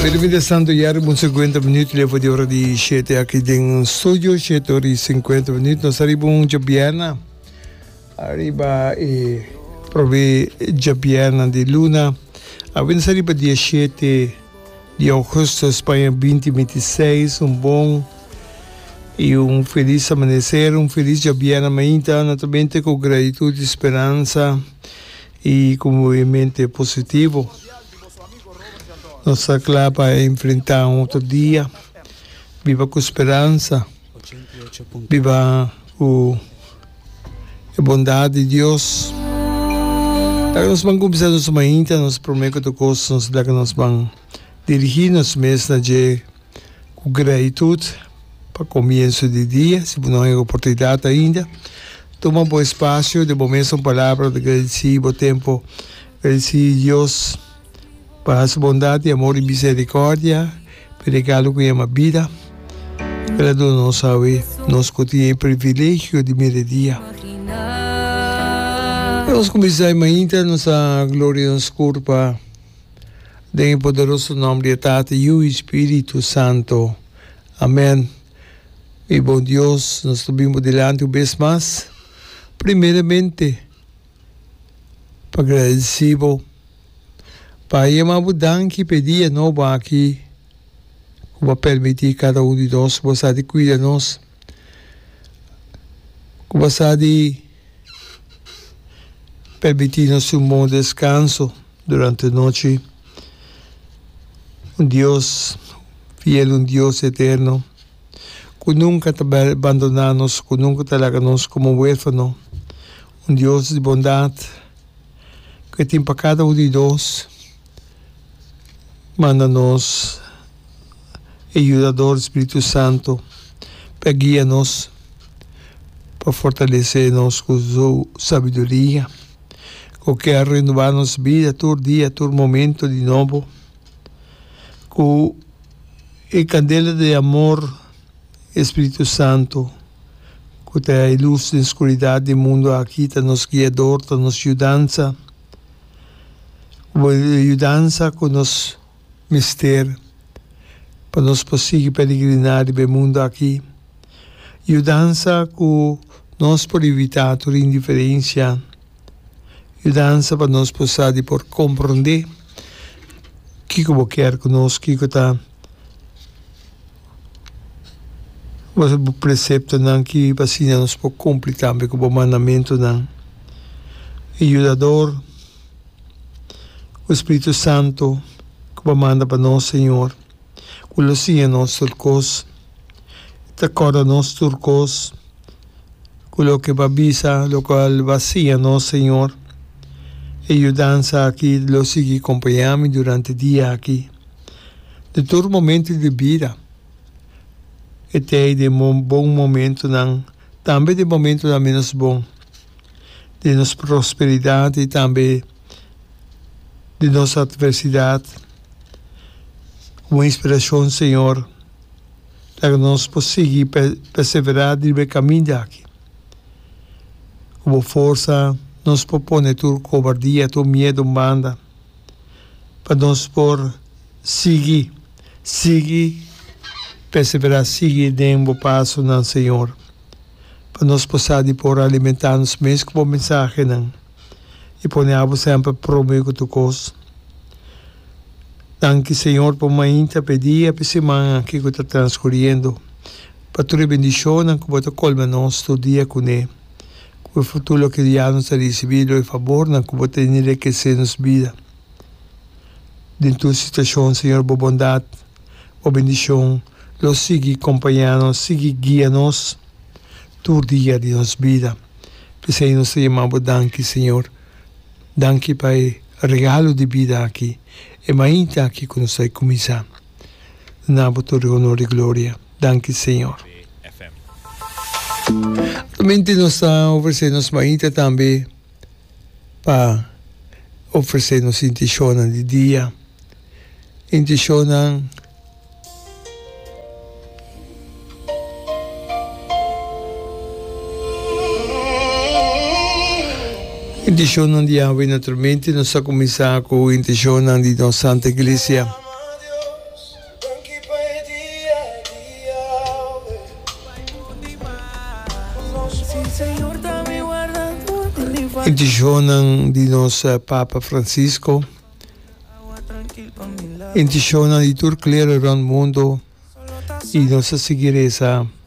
Medi fin de santo ya riba un sinkuenta minut leba di ora di shete aki den ons studio, shete ora i sinkuenta minut. Nos ta riba un djabianan ariba e probé djabianan di luna. A bini sa riba dia shete di augusto Spaña binti binti i seis. Un bon i un felis amaneser, un felis djabianan mainta. No ta bente ku gratitut i speransa. I ku bo e mente positivo nos ta kla pa enfrentá un otro dia. Biba ku speransa. Biba ku e bondat di Dios. Ora nos ban kuminsá nos mainta nos promé ku tur kos nos ta kla ku nos ban dirigí nos mes na dje. Ku gratitud pa komienso di dia, si bo no hen oportunidat ainda, tuma bo espasio di bo mes un palabra di gradisi, bo tempu gradisi Dios pa Su bondat i amor i miserikòrdia, pa e regalo ku yama bida, ku el a duna nos awe, nos ku tin e privilegio di mira e dia. Nos kuminsá e mainta, nos ta gloria nos Kur pa. Den e poderoso nom di e Tata, Yu i Spiritu Santo. Amen. Mi bon Dios, nos ta bin bo dilanti un bes mas, primeramente pa gradeci bo, pa yama bo danki p'e dia nobo aki, cu bo a permiti cada un di nos bo sa di cuida nos. Ku basa di permití nos un bon deskanso durante nochi, un Dios fiel, un Dios eterno, ku nunka ta bandoná nos, ku nunka ta laga nos komo huérfano, un Dios di bondat, ku e tin pa kada un di nos. manda nos e yudador Spiritu Santu pa guia nos, pa fortalesé nos ku su sabiduria, ku kier renubá nos bida tur dia, tur momentu di nobo, ku e kandela di amor di e Spiritu Santu ku ta e lus den oskuridad di mundu aki ta nos guiador, ta nos yudansa. Bo e yudansa ku nos mester pa nos por sigui peregriná riba e mundu aki, yudansa ku nos por ivitá tur indiferensia, yudansa pa nos por sa di por komprondé kiko bo ker ku nos, kiko ta. Bo sabi bo preceptonan ki pa asina nos por cumpli tambe cu bo mandamentonan. E Yudador, cu e Spiritu Santo cu bo manda pa nos, Señor, cu lo siña nos tur cos, ta corda nos tur cos, cu loke bo a bisa, locual bo a siña nos, Señor. E yudansa aki lo sigui compañami durante e dia aki. De tur momento di bida, e ta ei di bon momentonan, tambe di momentonan menos bon, di nos prosperidad y tambe di nos adversidad. Como inspiracion, Señor, laga nos por sigui persevera riba e caminda aki. Cu bo forsa nos por pone tur cobardia, tur miedo banda. pa nos por sigui, sigui perseverá, sigui den bo pasonan, Señor, pa nos por sa di por alimentá nos mes ku bo mensahenan i pone abo semper promé ku tur kos. Danki, Señor, pa un mainta p'e dia, p'e siman aki ku ta transkuriendo, pa tur e bendishonnan ku bo ta kolma nos tur dia kuné. ku e frutu loke dia nos a risibí lo e fabornan ku bo ta enriquesé nos bida. Den tur situashon, Señor, bo bondat, bo bendishon lo sigui kompañá nos, sigui guia nos tur dia di nos bida. P'esei nos ta yamá bo danki, Señor. Danki pa e regalo di bida aki, e mainta aki ku nos ta kuminsá. Lo na bo tur e honor i gloria. Danki Señor. Actualmente nos ta ofrece nos mainita tambe pa ofrece nos intencionnan di dia. Intencionnan intencionnan di Yahwe naturalmente nos ta cuminsa cu intencionnan di nos Santa Iglesia. Danki pa e dia a dia, owe. Bai mundi mas. Si Señor ta mi wardador di mi familia. Intishonnan di nos Papa Francisco. Intishonnan di tur klero rònt mundu i nos ta sigui resa.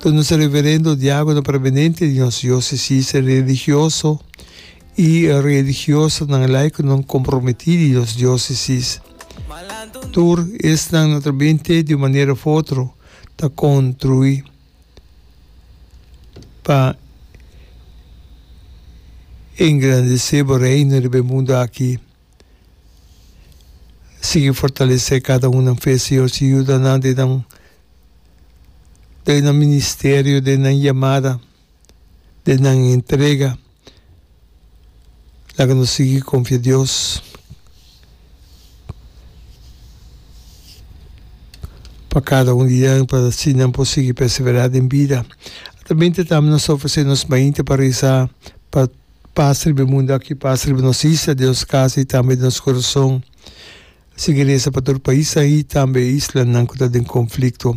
Ta nos reverendo diákono permanente di nos diósesisnan religioso i religiosanan laikonan komprometí di nos diósesis. Tur esnan naturalmente di un manera òf otro ta kontruí pa engrandesé bo Reino riba e mundu akí. Sigui fortalesé kada un nan fe, Señor. Sigui yuda nan den nan den nan ministerio, den nan yamada, den nan entrega. Laga nos sigui konfia, Dios, pa kada un di nan pa si nan por sigui perseverá den bida. Tambe nos ta ofresé nos mainta pa resa pa. pa sirbi mundu aki, pa sirbi nos isla, den nos kasa i tambe den nos kurason. Sigui resa pa tur paisan i tambe islanan ku ta den konflikto.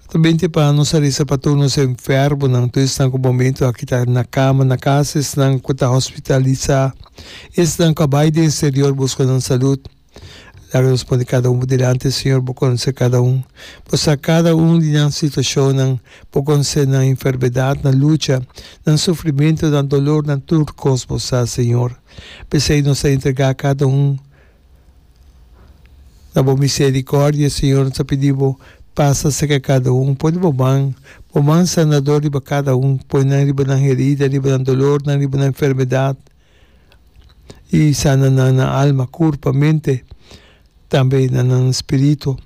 Ta binte pa nos a resa pa tur nos enfermunan, tur esnan ku momentu aki ta na kama na kasa, esnan ku ta hospitalisá i esnan ku a bai den eksterior buska nan salut. Laga nos pone kada un bo dilanti, Señor. Bo conoce cada un. Bo sa cada un di nan situacionnan. Bo conoce nan enfermedad, nan lucha, nan sufrimento, nan dolor, nan tur cos Bo sa, Señor. P'esey nos ta entrega cada un na Bo misericordia, Señor. Nos ta pidi Bo pasa cerca cada un. Pone Bo man, Bo man sanador riba cada un. Pone nan riba nan herida, riba nan dolornan, riba nan enfermedad. i sana nan na alma, kurpa, mente, tambe na nan spiritu.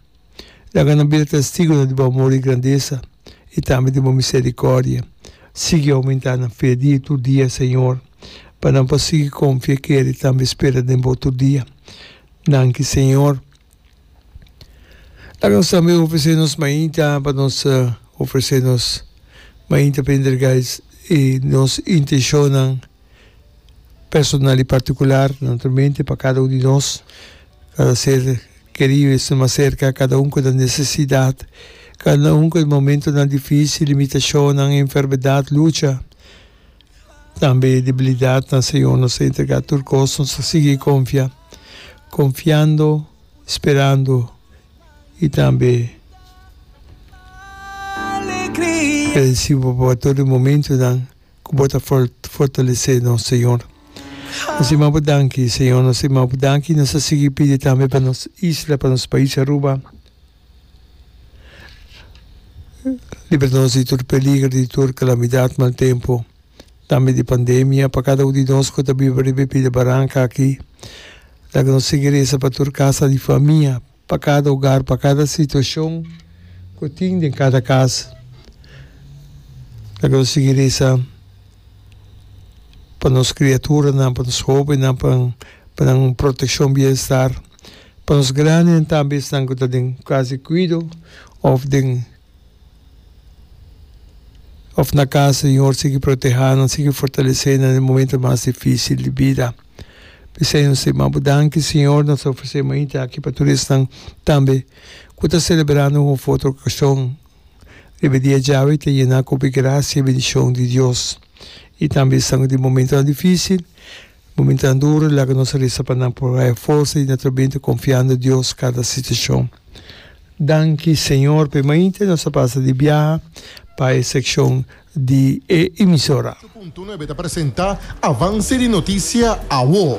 Laga nan bira testigu di bo amor i grandesa i tambe di bo miserikòrdia. Sigui oumentá nan fe dia tur dia, Señor, pa nan por sigui konfia, kere i tambe spera den bo tur dia. Danki, Señor. Laga nos tambe ofresé nos mainta pa nos ofresé nos mainta pa entrega e nos intenshonnan. personal y particular naturalmente pa cada un di nos, cada ser querido y esnan mas cerca, cada un cu ta necesidad, cada un cu e momentonan dificil, limitacionnan, enfermedad, lucha, tambe debilidadnan Señor nos a entrega tur cos, nos a sigui confia, confiando, sperando y tambe bendecibo pa tur e momentonan. ku bo ta fortalesé nos, Señor. Nos ta manda bo danki, Señor. Nos ta manda bo danki i nos ta sigui pidi tambe pa nos isla, pa nos pais Aruba. Libra nos di tur peligro, di tur kalamidat, mal tempu, tambe di pandemia. Pa kada un di nos ku ta biba riba e pida baranka aki, laga nos sigui resa pa tur kasa di famia. Pa kada ogar, pa kada situashon ku tin den kada kas, lo ke nos sigui resa pa nos kriaturanan, pa nos hobennan, pa nan protekshon bienstàr, pa nos grandenan tambe, esnan ku ta den kas di kuido òf den. Of na casa, Señor, sigui protehánan, sigui fortalesénan den e momento mas difícil di bida. Bisai nos e ma'bo danki, Señor. Nos ta ofresé mainta aki pa tur esnan tambe cu ta celebrando un of otro ocasion riba e dia djawe. Ta yená cu bo e gracia i bendicion di Dios. I tambe esnan cu tin momentonan difícil. Bo minta nan duru, laga nos a risa pa nan por haya forsa di na trabenta confiando Dios cada situacion. Danki Señor pa e mainta nos a pasa di biaha pa e seccion di e emisora. Ocho punto nuebe ta presenta Avance di noticia awor.